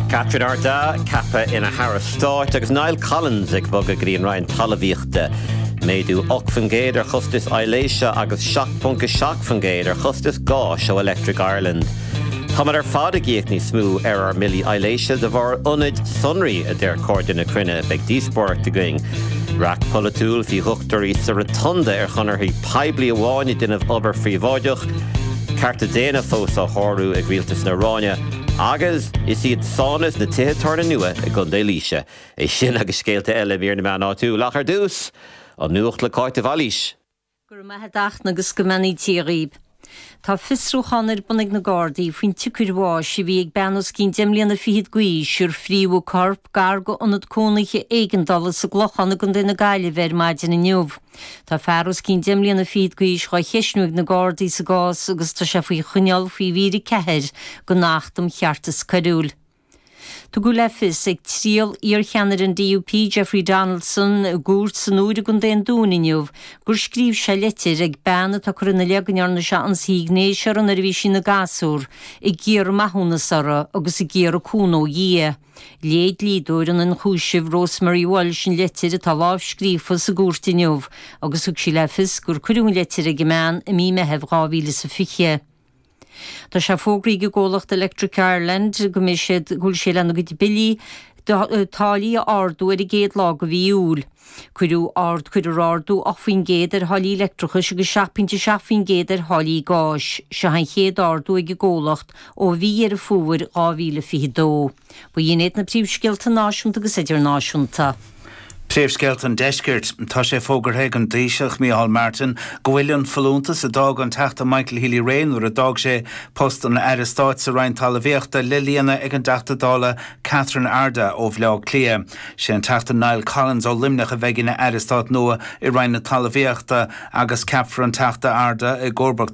Catherine Ardagh ceaptha ina hAire Stáit agus Niall Collins ag bogadh go dtí an Roinn Talmhaíochta. Méadú 8% ar chostais aibhléise agus 7.7% ar chostais gáis ó Electric Ireland. Táimid ar fad ag íoc níos mó ar ár mbillí aibhléise de bharr ionaid sonraí, a deir Cairde na Cruinne. Beidh díospóireacht againn. Raic polaitiúil, faoi dhochtúirí sa Rotunda ar chonarthaí. poiblí amháin ag déanamh obair phríobháideach, cearta daonna fós á sárú ag rialtas na hIaráine, agus seans ann do na tithe tábhairne nua i gContae Laoise. É sin agus scéalta eile i mír na meán áitiúil, ach ar dtús, an Nuacht le Cáit de Bhailís. Go raibh maith agat Dafna agus go mbeannaítear dhaoibh. Tá fiosrúchán ar bun ag na Gardaí faoin tsiocair bháis a bhí ag bean os cionn deich mbliana fichead d'aois ar frítheadh corp gar do ionad cónaithe éigeandála sa gClochán i gContae na Gaillimhe ar maidin inniu. Tá fear os cionn deich mbliana fichead d'aois dhá cheisniú ag na Gardaí sa gcás agus tá sé faoi choinneáil faoi mhír 4 den Acht um Cheartas Coiriúil. Tugadh le fios ag triail iarcheannaire an DUP Jeffrey Donaldson i gcúirt san Iúir i gContae an Dúin inniu gur scríobh sé litir ag bean atá curtha ina leith go ndearna sé ionsaí gnéis uirthi nuair a bhí sí ina gasúr ag iarraidh maithiúnas uirthi agus ag iarraidh cúnamh ó Dhia. Léigh dlíodóir an ionchúisimh Rosemary Walsh an litir atá lámhscríofa sa gcúirt inniu agus thug sí le fios gur cuireadh an litir ag an mbean i mí Meithimh 2020. Tá sé fógraithe ag an gcomhlacht Electric Ireland go mbeidh siad go bhfuil sé lena gcuid billí táillí a ardú ar an gcéad lá de mhí Iúil. Cuireadh ard cuireadh ardú 8 faoin gcéad ar tháillí leictreachais agus 7 pointe 7 faoin gcéad ar tháillí gáis. Seo an chéad ardú ag an gcomhlacht ó mhí Dheireadh Fómhair 2022. Ba shin iad na príomhscéalta náisiúnta agus idirnáisiúnta. Príomhscéalta an Deiscirt. Tá sé fógartha ag an dTaoiseach, Micheál Martin, go bhfuil an folúntas a d'fhág an Teachta Michael Healy-Rae nuair a d'fhág sé post an Aire Stáit sa Roinn Talamhaíochta le líonadh ag an dTeachta Dála Catherine Ardagh ó Bhleá Cliath. Sé an Teachta Niall Collins ó Luimneach a bheidh ina Aire Stáit nua i Roinn na Talamhaíochta agus ceapfar an Teachta Ardagh i gcomharbacht